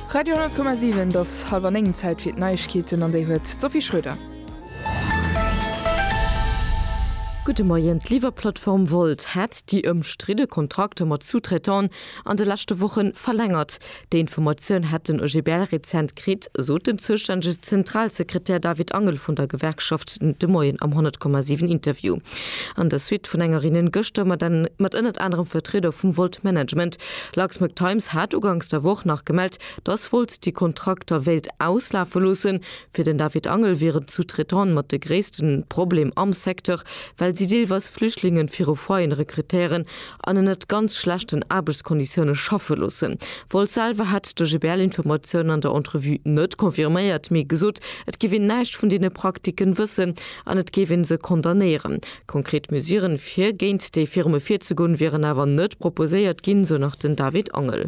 Radio 10,7 et ass halwer 9, Zäit fir d'Neiegkeeten an déi huet d'Sophie Schröder. Gudde Moien, D'Liwwerplattform Wolt hätt déi ëmstridde Kontrakter mat Sous-traitant'en an de leschte Woche verlängert. Déi Informatioun hätt den OGBL rezent kritt, sot den zoustännege Zentralsekretär David Angel vun der Gewerkschaft de Moien am 10,7 Interview. An der Suite vun enger Reunioun gëschter mat ënnert anerem Vertrieder vum Wolt Management Luxmag Times hat uganks der Woch nach gemellt, dass Volt déi Kontrakter wéilt auslafe loossen. Fir den David Angel wieren d'Sous-traitante mat de gréisste Problem am Secteur, well si deelweis Flüchtlingen viru Foyeren rekrutéieren an ënnert ganz schlechten Aarbechtskonditioune schaffe loossen. Volt selwer hätt de GBL-Informatiounen an der Entrevue net confirméiert, mee gesot, et géif een näischt vun deene Praktiken wëssen an et géif ee se condamnéieren. Konkret Mesuren, fir géint déi Firme virzegoen, wieren awer net proposéiert ginn, sou nach den David Angel.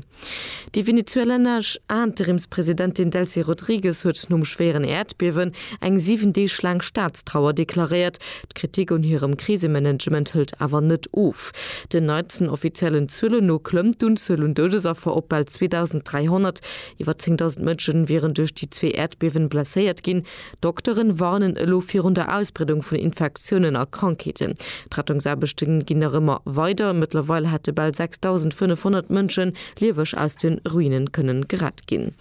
Déi venezuelanesch Interimspresidentin Delcy Rodriguez huet nom schwéieren Äerdbiewen eng 7 Deeg laang Staatstrauer deklaréiert. D'Kritik un hirem Krisemanagement hëlt awer net of. Den neitsten offiziellen Zuelen no klëmmt d'Unzuel un Doudesaffer op bal 2.300. Iwwer 10.000 Mënschen wieren duerch déi zwee Äerdbiewen blesséiert ginn. D'Dokteren warnen elo virun der Ausbreedung vun Infektiounen a Krankheeten. D'Rettungsaarbechte ginn nach ëmmer weider. Mëttlerweil hätte bal 6.500 Mënschen lieweg aus de Ruine kënne gerett ginn.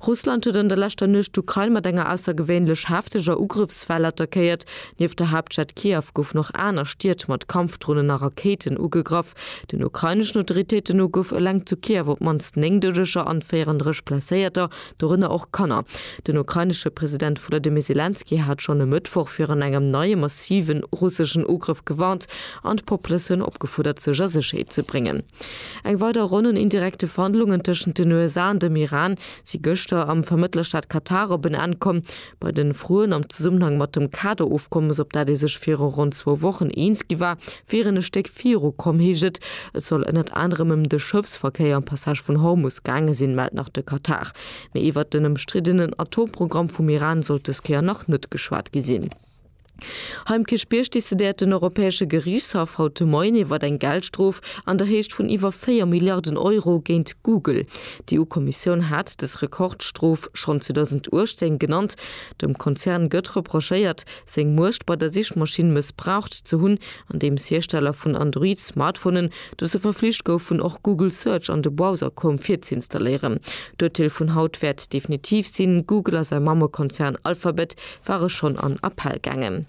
Russland huet an der leschter Nuecht d'Ukrain mat enger aussergewéinlech hefteger Ugrëffswell attackéiert. Nieft der Haaptstad Kiew goufen och aner Stied mat Kampfdronen a Rakéiten ugegraff. Den ukraineschen Autoritéiten no gouf eleng zu Kiew op d'mannst 9 Doudeger an 34 Blesséierter dorënner och Kanner. Den ukrainesche President Volodymyr Selenskyj hat schonn e Mëttwoch virun engem neie massive russeschen Ugrëff gewarnt an d'Poplëtioun opgefuerdert, sech a Sécherheet ze bréngen. Eng weider Ronn un indirekte Verhandlungen tëschent den USA an dem Iran si gëschter am Vermëttlerstaat Katar op en Enn komm. Bei den Froen am Zesummenhang mat dem Kaderofkommes, op dat ee sech viru ronn zwou Wochen eens gi war, wier een e Stéck viru komm, heescht et. Et soll ënnert anerem ëm de Schëffsverkéier am Passage vun Hormus gaange sinn, mellt nach de Katar. Mee iwwert den ëmstriddenen Atomprogramm vum Iran sollt des Kéier nach net geschwat gi sinn. Hei um Kierchbierg decidéiert den Europäesche Geriichtshaff haut de Moien iwwert eng Geldstrof an der Héicht vun iwwer 4 Milliarden Euro géint Google. D'EU-Kommissioun hat dës Rekordstrof schonn 2018 genannt. Dem Konzern gëtt reprochéiert, seng Muecht bei der Sichmaschinn mëssbraucht ze hunn, andeems Hiersteller vun Android-Smartphonen dozou verflicht goufen, och Google Search an de Browser Chrome virzuinstalléieren. D'Urteel vun haut wäert definitiv sinn, Google a säi Mammekonzern Alphabet war e schonn an Appell gaangen.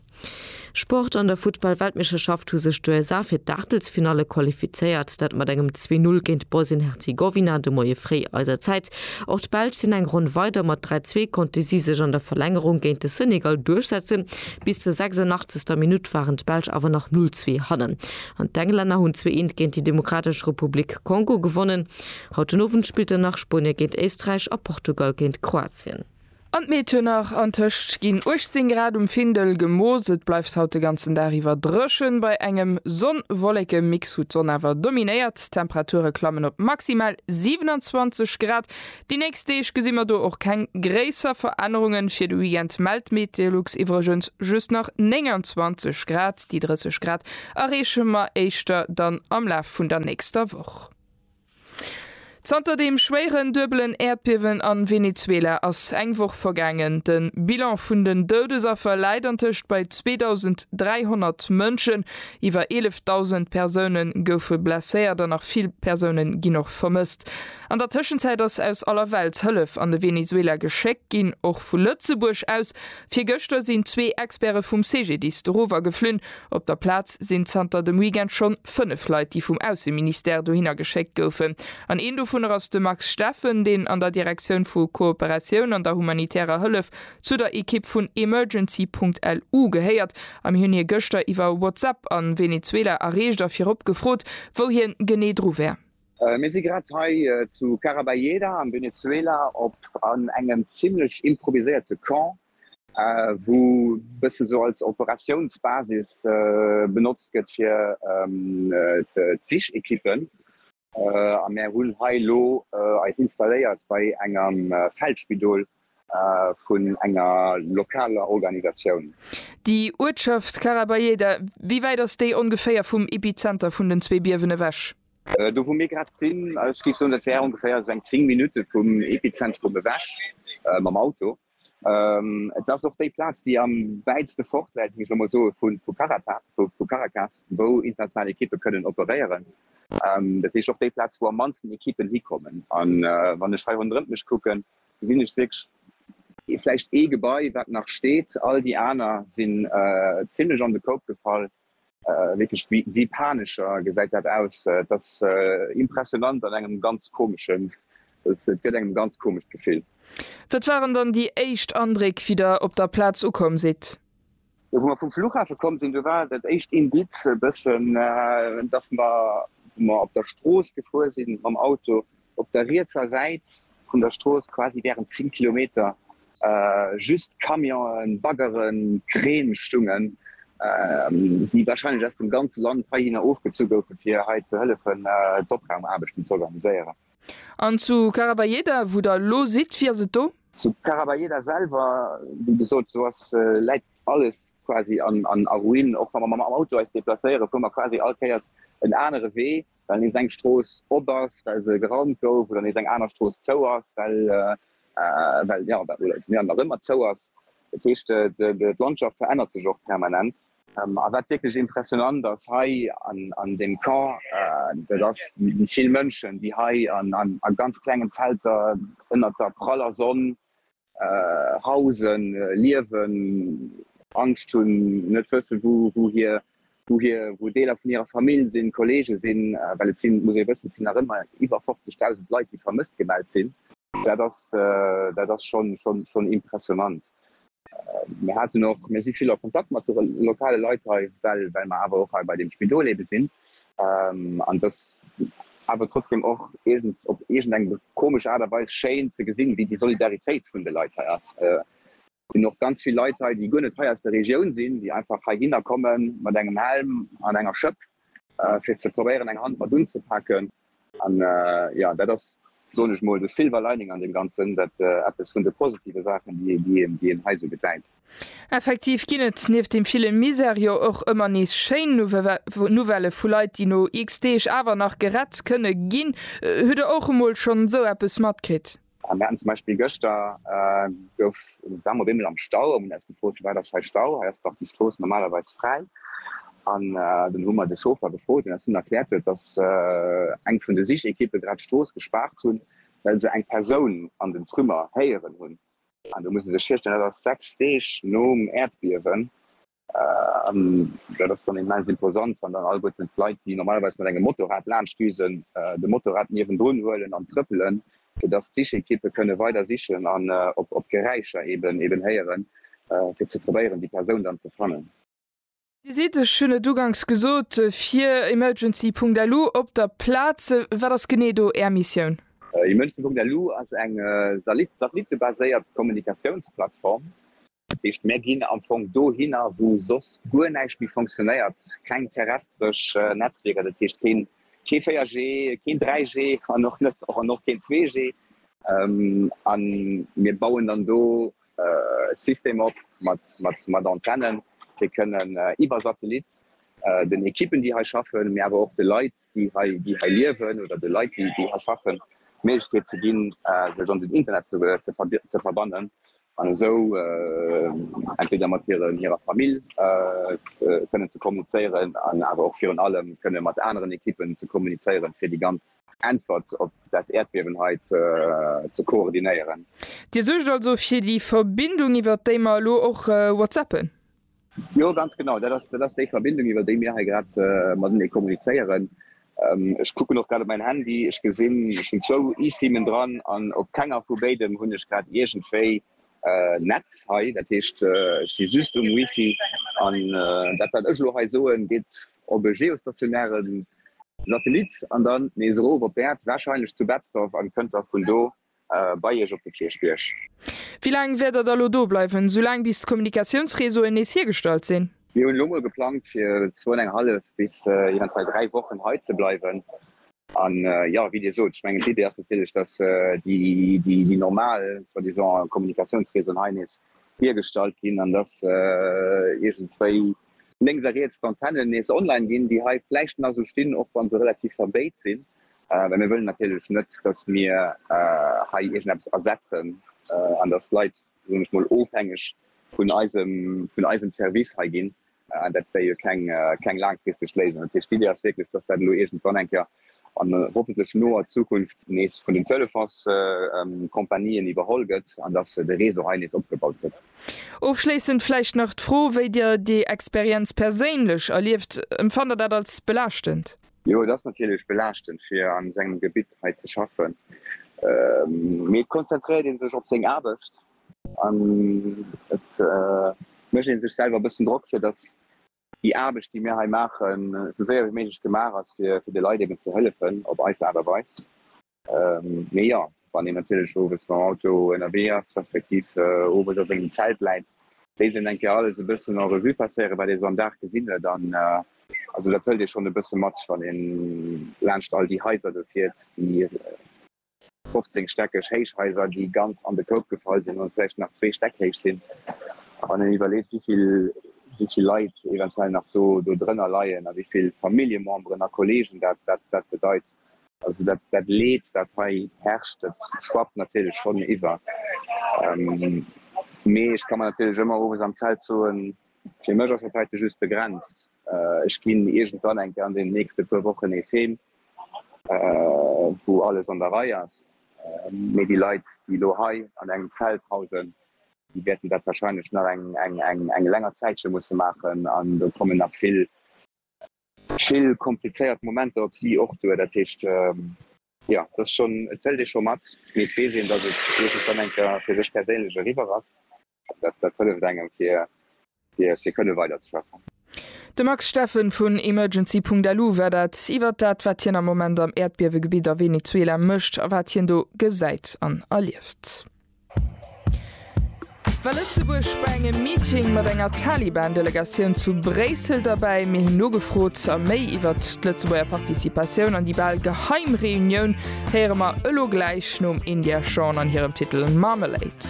Sport, An der Futtball-Weltmeeschterschaft hu sech d'USA fir d'Aachtelsfinalle qualifizéiert, dat mat engem 2-Null géint Bosnien-Herzegowina de Moie fréi eiser Zäit. Och d'Belsch sinn eng Ronn weider, mat 3-Zwee konnte si sech an der Verlängerung géint de Senegal duerchsetzen. Bis zur 86. Minutt waren d'Belsch awer nach 0-Zwee hannen an d'Englänner hunn 2-Eent géint déi Demokratesch Republik Kongo gewonnen. Haut den Owend spillt dann nach Spuenie géint Éisträich a Portugal géint Kroatien. An d'Meed huet nach an tëscht ginn 18 Grad um Findel gemooss. Et bleift haut de ganzen Dag iwwer dréchen. Bei engem Sonn-Wolleke-Mix hu d'Sonn awer dominéiert. D'Temperature klammen op maximal 27 Grad. Déi nächst Deeg gesi mer do och keng gréisser Verännerungen. Fir de Weekend mellt d'Meteolux iwwregens just nach 29 Grad. Déi 30 Grad erreeche mer éischter dann am Laf vun der nächster Woch. Zanter deem schwéieren duebelen Äerdbiewen a Venezuela ass eng Woch vergaangen. De Bilan vun den Doudesaffer läit antëscht bei 2.300 Mënschen. Iwwer 11.000 Persoune goufe blesséiert an nach vill Persoune ginn och vermësst. An der Tëschenzäit ass aus aller Welt Hëllef an de Venezuela geschéckt ginn, och vu Lëtzebuerg aus. Virgëschter sinn zwee Experte vum CGDIS dorower geflunn. Op der Plaz sinn zanter dem Weekend schonn 5 Leit, déi vum Ausseministère dohinner geschéckt goufen. An een dovunner ass de Max Steffen, deen an der Direktioun vu Kooperatioun an der humanitärer Hëllef zu der Ekipp vun Emergency.lu gehéiert. A mir hunn hie gëschter iwwer WhatsApp a Venezuela erreecht a virop gefrot, wou hien genee dru wär. Mir si grad hei zu Carabayeda am Venezuela op an engem zimlech improviséierte Camp. wou e bësse esou als Operatiounsbasis benotzt gëtt fir d'Sichequippen. A mär hunn hei elo eis installéiert bei engem Feldspidol vun enger lokaler Organisatioun. Déi Uertschaft Carabayeda, wéi wäit ass déi ongeféier vum Epizenter vun den zwee Biewen ewech? Do wou mir grad sinn, ech géif soen, dat wär ongeféier esou eng 10 Minutte vum Epizentrum ewech mam Auto. Et ass och déi Plaz, déi am wäitste fort läit, muss ech elo mol soe vu Caracas, wou international Ekippe kënnen operéieren. Dat heescht och déi Plaz, wou am mannsten Ekippen hikommen. A wann ech hei ronderëm mech kucken, gesinn ech vläicht ee Gebai, wat nach steet. All déi aner sinn zimlech an de Koup gefall. Wierklech wéi Panescher gesäit dat aus. Et ass impressionant an engem ganz komeschen, et gëtt engem ganz komescht Gefill. Wat waren dann déi éischt Andréck wéi der op der Plaz ukomm sidd? Jo, wou mer vum Fluchhafe komm sinn, do war dat éischt Indiz e bëssen, dass mer, wou mer op der Strooss gefuer sinn mam Auto, Op der rietser Säit vun der Strooss, quasi während 10 Kilometer, just Camionen, Baggeren, Kräne stungen, déi wahrscheinlech aus dem ganze Land heihinner ofgezu goufen, fir hei ze hëllefen, d'Opraumarbechten ze organiséieren. An zu Caraballéda, wou Der elo sidd, wéi ass et do? Zu Caraballéda selwer, wéi gesot, do ass, läit alles quasi a Ruine. Och wa mer mam Auto eis deplacéieren, fuere mer quasi all Kéiers en anere Wee. well nees eng Strooss op ass, well se geraumt gouf, oder nees eng aner Strooss zou ass, well d'Milieu nach ëmmer zou ass. Dat heescht, d'Landschaft verännert sech och permanent. A wat wierklech impressionant ass hei an deem Camp, dat ass déi vill Mënschen, déi hei a ganz klengen Zelter ënnert der praller Sonn Hausen, liewen, Angscht hunn, net wëssen, wou hir, wou hir, wou Deeler vun hirer Famill sinn, Kolleege sinn. Well et sinn, et muss ee wëssen, et sinn nach ëmmer iwwer 50.000 Leit, déi vermësst gemellt sinn. Dat ass, dat ass schonn, schonn, schonn impressionnant. Mir haten och, mir si vill a Kontakt mat de lokale Leit hei, well, well mer awer och hei bei deem Spidol ebe sinn. An dass awer trotzdem och iergend op iergend eng komesch Aart a Weis schéin ze gesinn, wéi déi Solidaritéit vun de Leit hei ass. Et sinn och ganz vill Leit hei, déi guer net hei aus der Regioun sinn, déi einfach heihinner komme mat engem Helm an enger Schëpp, fir ze probéieren, eng Hand mat unzepaken. An jo, dat ass, soen ech mol, de Silver Lining an deem Ganzen, dat eppes vun de positive Saachen, déi een hei esou gesäit. Effektiv ginn et nieft deem ville Misär jo och ëmmer nees schéin Nouvellë vu Leit, déi no X-Deeg awer nach gerett kënne ginn. Hutt Der och emol schonn esou eppes matkritt? A mir haten zum Beispill gëschter gouf, waren mer op eemol am Stau a mir hunn eis gefrot, firwat ass hei Stau, hei ass dach déi Strooss normalerweis fräi. An dunn hu mer de Chauffer gefrot, deen eis dunn erkläert huet, datt eng vun de Sichekippe grad d'Strooss gespaart hunn, well se eng Persoun an den Trümmer héieren hunn. An do muss ee sech virstellen, dat ass sechs Deeg nom Äerdbiewen, An dat ass dann immens imposant, wann dann alleguerten d'Leit, déi normalerweis mat engem Motorrad laanschtdüsen, de Motorrad niewendrun huelen an trëppelen, fir dass d'Sichekippe kënne weider sichen an op Geräischer eben héieren, fir ze probéieren, déi Persoun dann ze fannen. Dir sidd, ech hunn et uganks gesot, fir emergency.lu op der Plaz. Wat ass genee do Är Missioun? Emergency.lu ass eng satellitte-baséiert Kommunikatiounsplattform. Dat heescht, mir ginn am Fong dohinner, wou soss guer näischt méi funktionéiert, keng terrestresch Netzwierker, dat heescht kee 4G, keen 3G an och net an och keen 2G. A mir bauen dann do e System op mat Antennen, déi kënnen iwwer Satellit den Ekippen, déi hei schaffen, mee awer och de Leit, déi hei liewen, oder de Leit, déi hei schaffen, d'Méiglechkeet ze ginn, sech an den Internet ze verbannen. an esou entweder mat hiren, hirer Famill kënnen ze kommunizéieren an awer och virun allem kënne mat aneren Ekippen ze kommunizéieren, fir déi ganz. Äntwert op dat Äerdbiewen hei ze koordinéieren. Dir suergt also fir déi Verbindung, iwwert déi mer elo och whatsappen? Jo, ganz genau. Dat ass, dat ass déi Verbindung, iwwer déi mir hei grad matenee kommunizéieren. Ech kucken och grad op mäin Handy. Ech gesinn, ech hunn zwou eSimen dran an op kenger vu béidem hunn ech grad iergendwéi Netz hei. Dat heescht, ech si just um Wifi. An dat, wat ech elo hei soen, geet op e geostationäre Satellit an dann nees erof op d'Äerd, warscheinlech zu Betzdorf, an kënnt da vun do Bei Iech op de Kierchbierg. Wéi laang wäert Der da lo do bleiwen? Sou laang bis d'Kommunikatiounsreseauen nees hiergestallt sinn. Mir hunn elo mol geplangt fir zwou an eng hallef bis eventuell dräi Wochen hei ze bleiwen. An jo, wéi Dir sot, ech mengen d'Idee ass natierlech, dass déi normal soi-disant Kommunikatiounsreseauen hei nees hiergestallt ginn an dass iergendwéi lénks a riets d'Antennen nees online ginn, déi hei vläicht nach esou stinn, och wa se relativ verbéit sinn. Well mir wëllen natierlech net, dass mir hei iergendeppes ersetzen an dass d'Leit, soen ech mol, ofhängeg vun eisem Service hei ginn. An dat wär jo keng laangfristeg Léisung. Dat heescht, d'Iddi ass wierklech, dass dat elo iergendwann eng Kéier an hoffentlech noer Zukunft nees vun den Telefonscompanien iwwerholl gëtt an dass de Réseau hei nees opgebaut gëtt. Ofschléissend vläicht nach d'Fro, wéi Dir déi Experienz perséinlech erlieft. Empfannt Der dat als belaaschtend? Jo, et ass natierlech belaaschtend fir an esou engem Gebitt hei ze schaffen, mee et konzentréiert ee sech op seng Aarbecht an et mécht ee sech selwer e bëssen Drock, fir datt déi Aarbecht, déi mir hei maachen, esou séier wéi méiglech gemaach ass, fir de Leit eben ze hëllefen op eis Aart a Weis. Mee jo, wann een natierlech owes mam Auto ënnerwee ass, respektiv owes a sengem Zelt läit, léisst een eng Kéier alles e bëssen en Revue passéieren, wat ee sou am Dag gesinn huet. An also dat hëlt ee schonn e bësse mat, wann ee laanscht all déi Haiser do fiert, déi 15 stäckeg héich Haiser, déi ganz an de Koup gefall sinn an vläicht nach zwee Stäck héich sinn, wann een iwwerleet, wéi vill Leit eventuell nach do drënner leien a wéi vill Familljememberen a Kolleegen dat bedeit. Also dat dat Leed dat hei herrscht, dat schwappt natierlech schonn iwwer, mee ech ka mer natierlech ëmmer owes am Zelt soen, fir mech ass dat heite just begrenzt, ech ginn iergendwann eng Kéier an deenen nächste puer Wochen nees heem, wou alles an der Rei ass, mee déi Leit déi elo hei an engem Zelt hausen, déi wäerten dat wahrscheinlech nach eng eng eng eng länger Zäitche musse maachen an do kommen nach vill vill komplizéiert Momenter op si och duer. Dat heescht, jo, dass schonn, et zéllt ee scho mat, mee et weess een, dass et iergendwann eng Kéier fir sech perséinlech eriwwer ass. An dat, dat hëlleft engem, fir, fir, fir kënne weiderzeschaffen. De Max Steffen vun Emergency.lu war dat iwwert dat, wat hien am Moment am Äerdbiewegebitt a Venezuela mécht a wat hien do gesäit an erlieft. War Lëtzebuerg bei engem Meeting mat enger Taliban-Delegatioun zu Bréissel derbäi? Mir hunn nogefrot a méi iwwert d'Lëtzebuerger Participatioun an déi bal geheim Reunioun héiere mer elo gläich nom India Shawn an hirem Titel Marmalade.